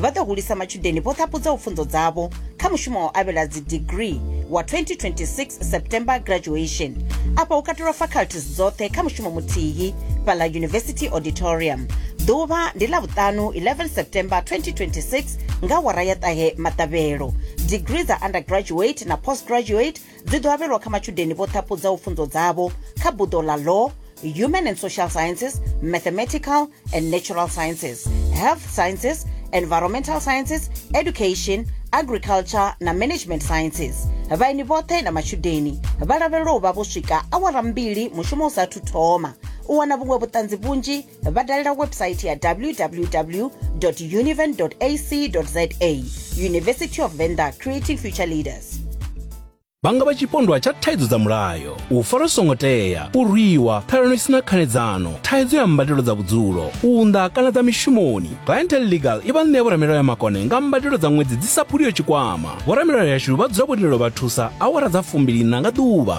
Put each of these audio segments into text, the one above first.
vha ḓo hulisa matshudeni vho ṱhapudzaho pfunzo dzavho kha mushumo wa u avhela dzidigrii wa 2026 september graduation afha hu katelwa faculties dzoṱhe kha mushumo muthihi fhaḽa university auditorium ḓuvha ndi ḽa vhuṱanu 11 september 2026 nga wara ya ṱahe maṱavhelo digrii dza undergraduate na postgraduate dzi ḓo avhelwa kha matshudeni vho ṱhaphudzaho pfunzo dzavho kha buḓo ḽa law human and social sciences mathematical and natural sciences health sciences environmental sciences education agriculture na management sciences vhaini vhoṱhe na matshudeni vha lavhelelwa u vha vho swika awara mbili mushumo u sathu thoma u wana vhuṅwe vhuṱanzi vhunzhi vha dalela website ya www univen ac za university of venda creating future leaders vhanga vha tshipondwa tsha thaidzo dza mulayo u fara songo tea u rwiwa ṱhalano isina khanedzano thaidzo ya mbadelo dza vhudzulo u unḓa kana dza mishumoni clientel legal i vha ṋea vhoramilayo ya makone nga mbadelo dza ṅwedzi dzi sa phuliyo tshikwama vhoramilayo yashu vha dzula vho lindelo vha thusa awara dza fumbilina nga ḓuvha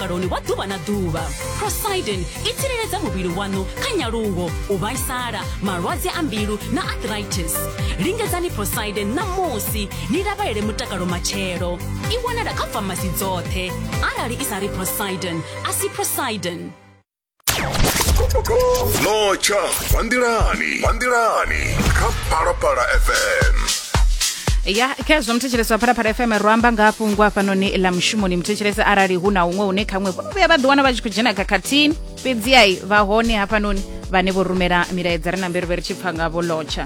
vhuongeloni wa ḓuvha na ḓuvha prosidin i tsireledza muvhili waṋu kha nyaluwo u vhaisala malwadze a mbilu na arthritis lingedzani prosidin ṋamusi ni lavhelele mutakalo matshelo i wanala kha famasi dzoṱhe arali i sa ri prosidin a si prosidin notsha bva nḓilani bva nḓilani kha phalaphala fm ya khezwo muthetshelesi wa phalaphala fm ro amba nga fhungo hafhanoni ḽa mushumoni muthetshelesi arali hu na huṅwe hune khaṅwe vho vhuya vha ḓiwana vha tshi khou dzhena khakhathini fhedzi ai vha hone hafhanoni vhane vho rumela milaedza ri na mberivhe ri tshi pfa ngavho lotsha